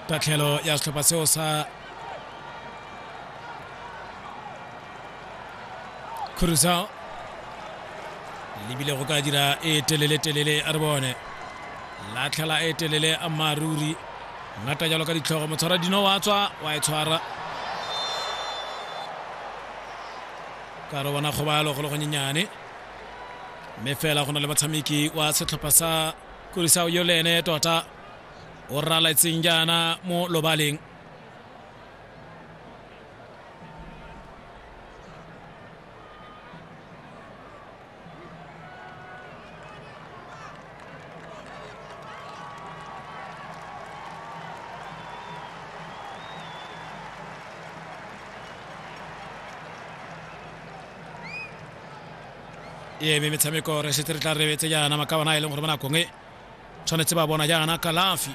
tatlhelo ya setlhopha seo sa Cruzao lebile go ka dira e telele telele a re bone latlhela e telele a maruri ngata jalo ka ditlhogo motshwara dino wa tswa wa e tshwara ka re bona kgobalo go le gonyenyane mme fela go na le motshameki wa setlhopha sa kurisao yo le ene tota o raletseng jaana mo lobaleng e eme metshameko re setse re tla rebetse jaana makabana a e leng gore mo nakong e tshwanetse ba bona jaana kalafi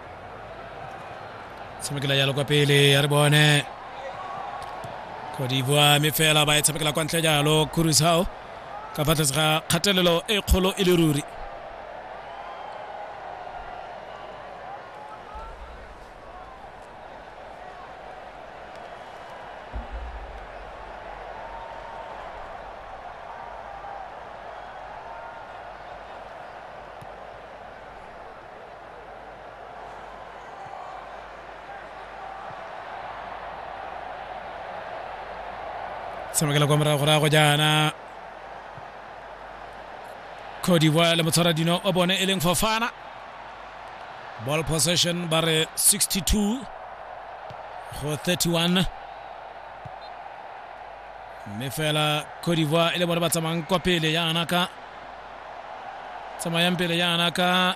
tshamekela jalo kwa pele ya re bone kodibua mme fela ba e tshamekela kwa ntle jalo kurusao ka fa tlase ga kgatelelo e kgolo e le ruri tshamekela kwa morago rago jaana cote divoire le motshwara dino o bone e leng fofana ball possession ba re 62 go 31 mme fela cote divoire e le bone ba tsamayang kwa pele yana ka tsamayang pele yana ka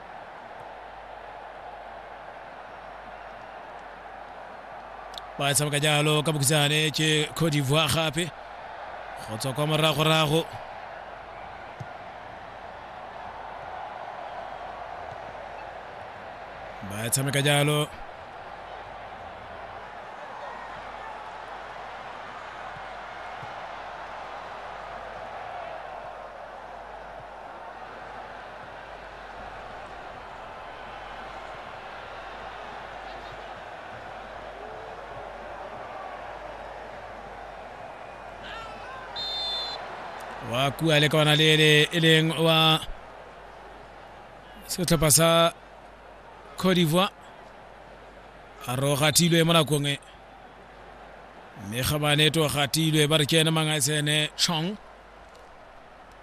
ba e tshameka jalo ka bokisane ke cote d'ivoire gape go tswa kwa moragorago ba e tshameka jalo wa kua le ka ona le ele e leng wa setlhopha sa cote d'ivoire a rogatilwe mo nakong e mme ga baneto gatilwe ba re ke ene mangatsene chong